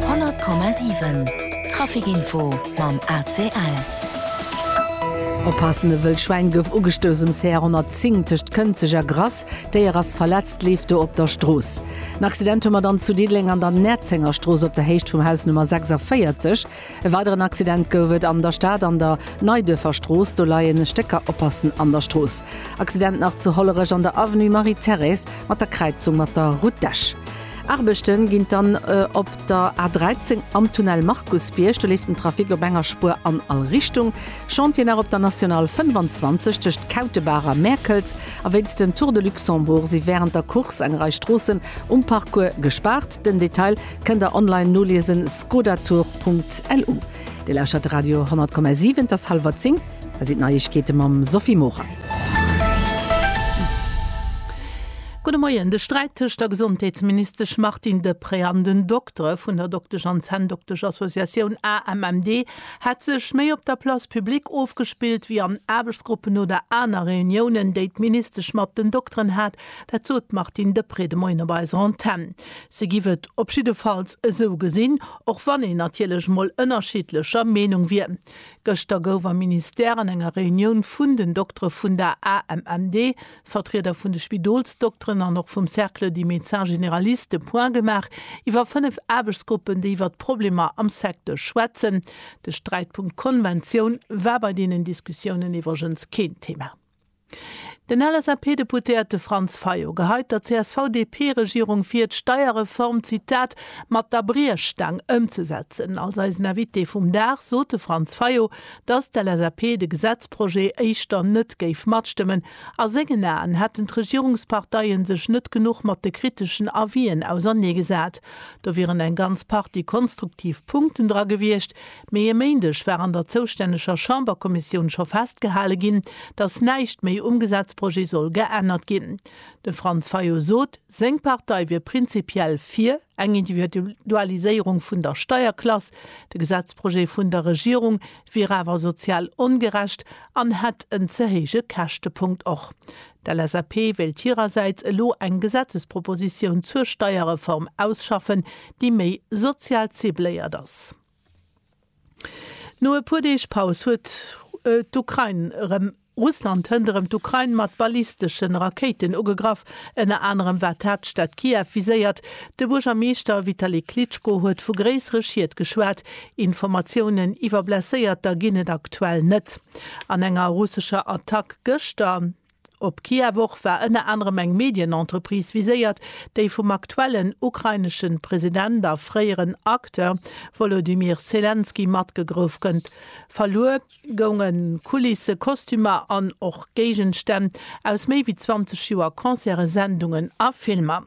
100,7 Trafic Info mam ACL. Oppassen, E wëllt Schwäin gouf ugestouss um CR 110 tëscht Kënzeg a Grass. D'Déier ass verletzt, leeft do op der Strooss. En Accident hu mer dann zu Diddeleng an der Näerzengerstrooss op der Héicht vum Haus Nummer 46. E weideren Accident gouf et an der Stad an der Neiduerfer Strooss, do leien Stécker Oppassen an der Strooss. Accident nach zu Hollerech an der Avenue Marie-Thérèse mat der Kräizung mat der Route d'Esch. Aarbechte ginn dann op der A 13 am Tunnel Markusbierg, do leeft den Trafic op enger Spuer an all Richtung. Chantier nach op der National 25 tëscht Kautebaach a Mäerkels. A wéinst dem Tour de Luxembourg si wärend der Course eng Rei Stroossen um Parcours gespaart. Den Detail Kënnt der online noliesen, skodatour.lu. Dir lauschtert Radio 10,7, et ass hallwer 10, hei sinn d'Neiegkeete mam Sophie Morang. Gudde Moien, De Sträit tëscht der Gesondheetsministesch Martine Deprez an den Doktere vun der Doktesch an Zänndokteschassociatioun AMMD hätt sech méi op der Place publique ofgespillt, wéi an Aarbechtsgruppen oder aner Reuniounen, déi d'Ministesch mat den Dokteren hat, Dat sot d'Martine Deprez de Moien op eiser Antenn. Si giff et op jiddefalls esou gesinn, och wann een natierlech mol ënnerschiddlecher Meenung wier. Gëschter gouf am Ministère an enger Reunioun vun den Doktere vun der AMMD, Vertrieder vun de Spidolsdokteren an och vum Cercle des médecins généralistes de Point gemaach iwwer fënnef Aarbechtsgruppen, déi iwwer d'Problemer am Secteur schwätzen. De Sträitpunkt Konventioun war bei deenen Diskussiounen iwwregens keen Thema. Den LSAP-Deputéierte Franz Fayot geheit der CSV-DP-Regierung vir, d'Steierreform, Zitat, mat der Briechstaang ëmzesetzen. Als eisen Invité vum Dag sot de Franz Fayot, datt d'LSAP de Gesetzprojet éischter net géif matstëmmen. A sengen Aen hätten d'Regierungsparteie sech net genuch mat de kriteschen Avisen auserneegesat. Do wieren eng ganz Partie konstruktiv Punkten dra gewiescht, Mee e Méindeg war an der zoustänneger Chamberkommissioun scho festgehale ginn, datt näischt méi um Gesetzprojet soll geännert ginn. De Franz Fayot sot, seng Partei wier prinzipiell fir eng Individualiséierung vun der Steierklass, de Gesetzprojet vun der Regierung wier awer sozial ongerecht an hätt en ze héije Käschtepunkt. Och d'LSAP wéilt hirersäits elo eng Gesetzespropositioun zur Steierreform ausschaffen, déi méi sozial cibléiert ass. No e puer Deeg Paus huet d'Ukrain erëm. Russland hënt erëm d'Ukrain mat ballisteschen Rakéiten ugegraff. Ënner anerem war d'Haaptstad Kiew viséiert. De Buergermeeschter Vitali Klitschko huet vu gréissere Schied geschwat. Informatiounen iwwer Blesséierter ginn et aktuell net. An enger russescher Attack gëschter Op d'Kiewer Woch war ënner anerem eng Medienentreprise viséiert, déi vum aktuellen ukrainesche President a fréieren Acteur Wolodymyr Selenskyj matgegrouf gëtt. Verluer gounge Kulisse, Kostümer an och Géigenstänn aus méi wéi 20 Joer Concerte, Sendungen a Filmer.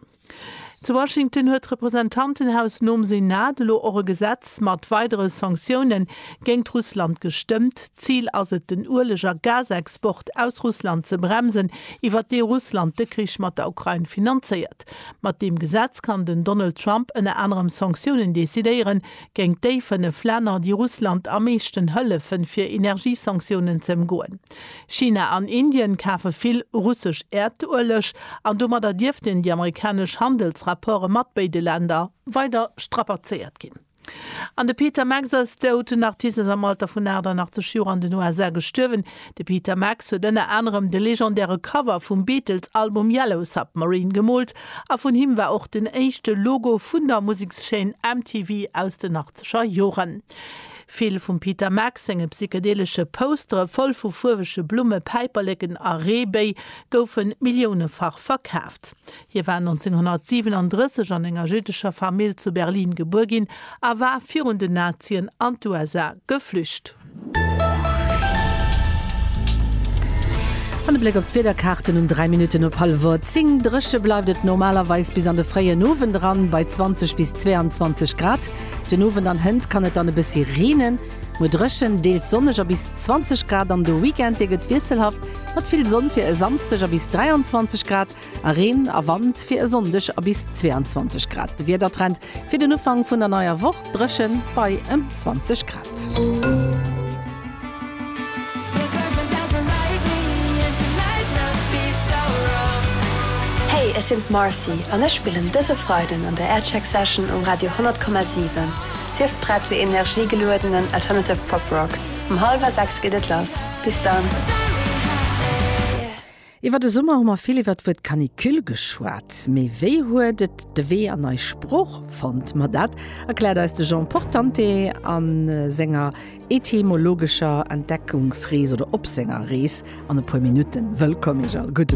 Zu Washington huet d'Representantenhaus nom Senat elo och e Gesetz mat weidere Sanktioune géingt Russland gestëmmt. D'Zil ass et, den Ueleg a Gasexport aus Russland ze bremsen, iwwert dee Russland de Krich mat der Ukrain finanzéiert. Mat deem Gesetz kann den Donald Trump ënner anerem Sanktiounen decidéieren géingt déi fënnef Länner, déi Russland am meeschten hëllefen, fir Energiesanktiounen ze ëmgoen. China an Indien kafe vill russesch Äerdueleg an domadder dierften déi amerikanesch Handelsrapporte mat béide Länner weider strapazéiert ginn. An de Peter Max ass dout. Den Artist ass am Alter vun 88 Joer an den USA gestuerwen. De Peter Max huet ënner anerem de legendäre Cover vum Beatles-Album Yellow Submarine gemoolt a vun him war och den éischte Logo vun der Musekschaîne MTV aus den achtzeger Joren. Vill vum Peter Max senge psychedelesche Poustere voll vu fuerwege Blumme, Päiperleken a Reebéi goufe milliounefach verkaaft. Hie war 1937 an enger jüddescher Famill zu Berlin gebuer ginn a war virun den Nazien an d'USA geflücht. An e Bléck op d'Wiederkaarten um 3 Minutten op hallwer 10. Dréche bleift et normalerweis bis an de fréien Owend eran bei 20 bis 22 Grad. Den Owend an Hënt kann et dann e bëssi reenen, muer dréchen, deels sonneg a bis 20 Grad an de Weekend, dee gëtt wiesselhaft mat vill Sonn fir e Samsdeg a bis 23 Grad a Reen a Wand fir e Sonndeg a bis 22 Grad. De Wiedertrend fir den Ufank vun der neier Woch, dréchen bei ëm 20 Grad. Hey, ech sinn d'Marcy an ech spillen dëse Freiden an der Aircheck Session um Radio 100,7. Sief prett fir energiegeluedenen alternative Pop Rock. Um hallwer 6 geet et lass. Bis dann! Iwwer de Summer hu mer vill iwwer d'Wuert Canicule geschwat. Mee wéi huet et de Wee an eis Sprooch fonnt? Ma dat erkläert eis de Jean Portante a senger etymologescher Entdeckungsrees oder op senger Rees an e puer Minutten. Wëllkomm Iech all!